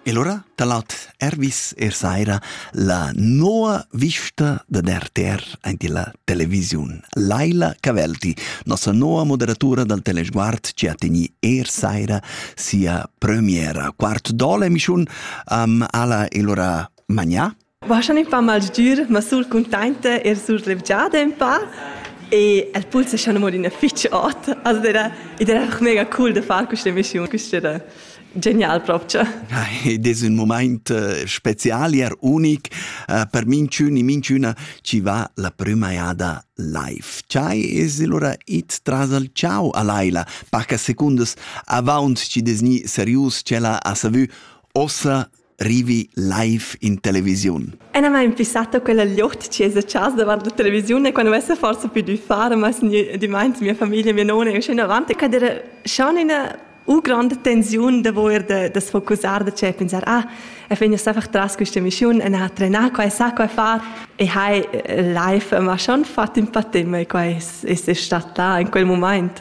E lura da lat Ervis er saira la noa vista dad RTR aint illa televisiun. Laila Cavelti, nossa noa moderatura dal Telesguard, ci ha tegni er saira sia premiera. Quart dola emischiun um, ala e lura magnà Vaschan in pa malgir, ma sul cuntainta er sul levgiada in pa. E el pulsa schon amor ina fitg ot. Also era, ed era auch mega cool da far questa missione. Questa era genial proprio. Ed es un moment eh, special er unic eh, per minchün e minchüna chi va la prüma eada live. Ciai es allora it tras al ciao a Laila, paca secundas avaunt chi desgni serius cella a savü ossa rivi live in televisiun. Ena mai impissata quella gliocht ci esa chas davant la televisiun e quando vessa forse più di fare, ma di meins mia famiglia, mia nona e scena avanti, che era schon una u grande tensione de voler de, de sfocussar de c'è pensar ah, e fin es einfach tras questa missione e a trenare qua e sa qua far e hai live ma schon fatto un po' tempo e qua es, es stato là in quel moment.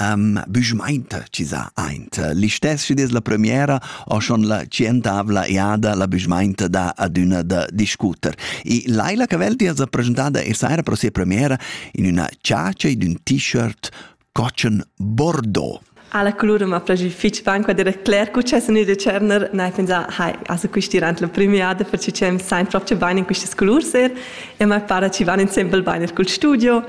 um, büschmainta chi sa aint. L'istess chi es la premiera o schon la cientavla eada la büschmainta da adüna da discuter. E Laila Caveldi es presentada e saira pro sia premiera in üna ciacia ed ün t-shirt cocen Bordeaux. Alla colura ma plagi fitch ban qua dire Claire cu c'è sunu de Cerner nai pensa hai also questi rant la premiada per ci cem sein proprio bain in questi colur ser e mai para ci van in sembel bain il cul studio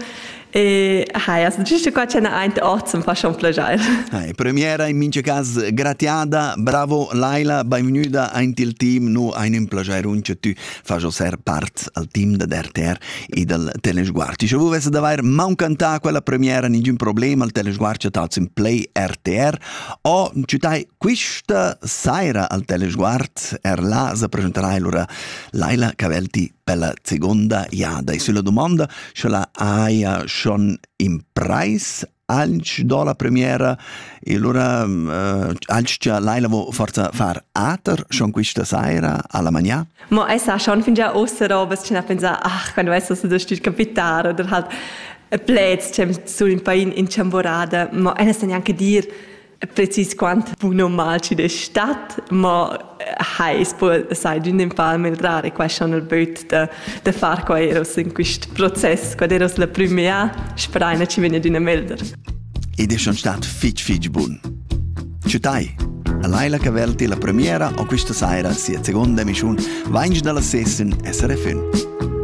E haja sentì qua c'è aint ort zum fa schon plagiar. Hai, premiera in mincha cas gratiada, bravo Laila, benvenuta aint il team, nu ein un plagiarun che tu fas ser part al team da RTR e dal Telesguard. Ti vu vesse d'avair mancantà quella premiera ningün problem al Telesguard che tats in play RTR o ci tai quista saira al Telesguard er là se presenterai allora Laila Cavelti per la seconda jada. E sulla domanda sche la haja schon impreis anche do la premiera e allora uh, anche già Laila vo forza far ater schon questa sera alla magna ma è sa schon fin già ostera bes ce na pensa ach quando è so da sti capitare oder halt plets cem sul in pain in chamborada ma è neanche dir precis quant bun o mal ci de stat, ma hai spo sai d'un in pa meldrare qua schon il böt da da far qua eros in quist process, quad eros la prümia, speraina ci vegna d'una melder. Ed è schon stat fitch fitch bun. Ciutai! A Laila Cavelti la premiera o questa saira sia seconda emissiun Vainch dalla sessen SRFN.